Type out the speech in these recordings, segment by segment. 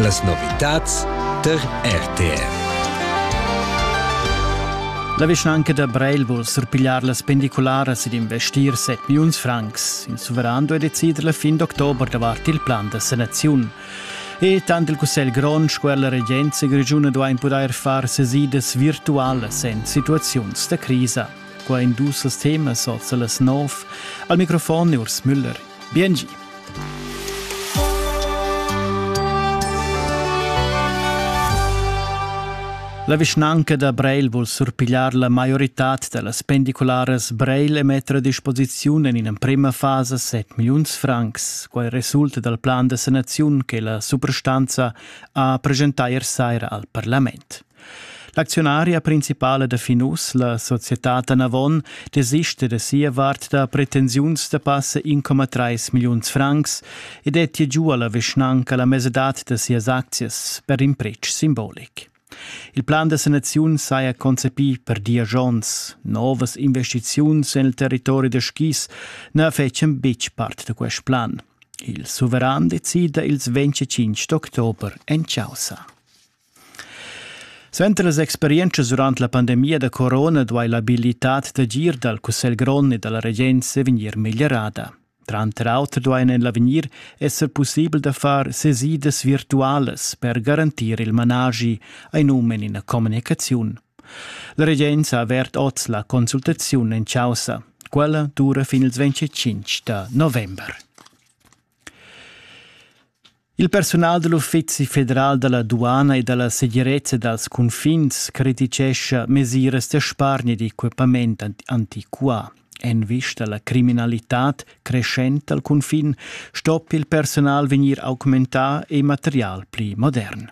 Las novitads tar RTR. La vischnanca da Breil vul surpigliar las pendicularas ed investir 7 milliuns francs. Il suveran duai decider la fin d'october davart il plan da sanaziun. E tant il Cussegl grond sco la regenza grigiuna duain pudair far sesidas virtualas en situaziuns da crisa. Qua in dus temas oz las nov. Al microfon Urs Müller. Biengi. La vischnanca da Breil vul surpigliar la maioritad da las pendicularas Breil e metter a disposiziun en in'emprima fasa 7 milliuns francs. Quai resulta dal plan da sanaziun che la suprastanza ha presentà ier saira al parlament. L'acziunaria principala da Finus, la societad Anavon, desista da sia vart da pretensiuns da passa 1,3 milliuns francs e dettia giu alla vischnanca la mesadad da sias aczias per in pretsch simbolic. Il plan da sanaziun saja concepì per diagions. Novas investiziuns nel territori da skis na fecien betg part da quest plan. Il suveran decida ils 25 d'october en Chausa. Suenter las experientschas durant la pandemia da corona duai l'abilitad d'agir dal Cussegl grond e da la regenza vegnir meglierada. Tranter auter duain en l'avegnir esser pussibel da far sesidas virtualas per garantir il managi, ein um en ina communicaziun. La regenza ha avert oz la consultaziun en chaussa. Quella dura fin ils 25 da november. Il persunal da l'Uffizi federal da la duana e da la segirezza dals cunfins crititgescha mesiras da spargner d'equipament antiquà. En vista alla criminalitad crescenta al cunfin stoppi il personal vegnir augmentà e material pli modern.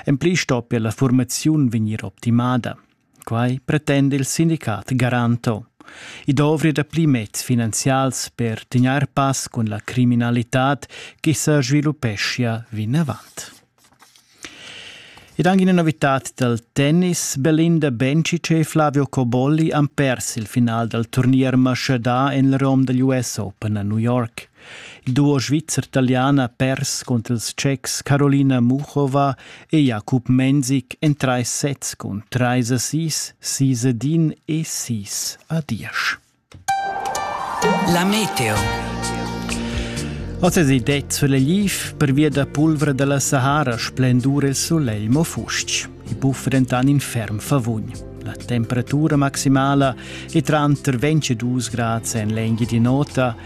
En pli stoppia la formaziun vegnir optimada. Quai pretenda il sindicat Garanto. I dovri dapli meds finanzials per tegnair pass cun la criminalitad che sa sviluppeschia vinavant. Ed anche una novità del tennis, Belinda Bencic e Flavio Cobolli han perso il final del turnier mascidà en il rom degli US Open a New York. Il duo svizzer-talian ha pers cunter ils tschechs Carolina Muchova e Jakub Menzik en trais sets cun trais assist, sis ad in e sis ad diesch. La meteo. Oz es det sulla liv pervia da pulvra dalla Sahara splendur il solegl mo fustg. I buffa dentan in ferm favugn. La temperatura maximala è tranter 22 grad en l'engi di nota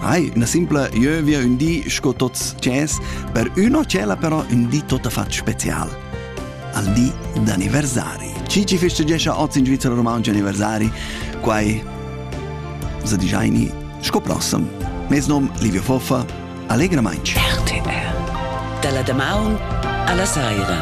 Hai, üna simpla ieuvia ün di sco tots tschess, per üna cella però ün di tot fat special. Al di d'anniversari. Chi ci festeggescha oz in Svizzera Romaunci anniversari? Quai sa digiaini sco prossem. Mes nom Livio Foffa, allegramainch. RTR. Dalla damaun alla saira.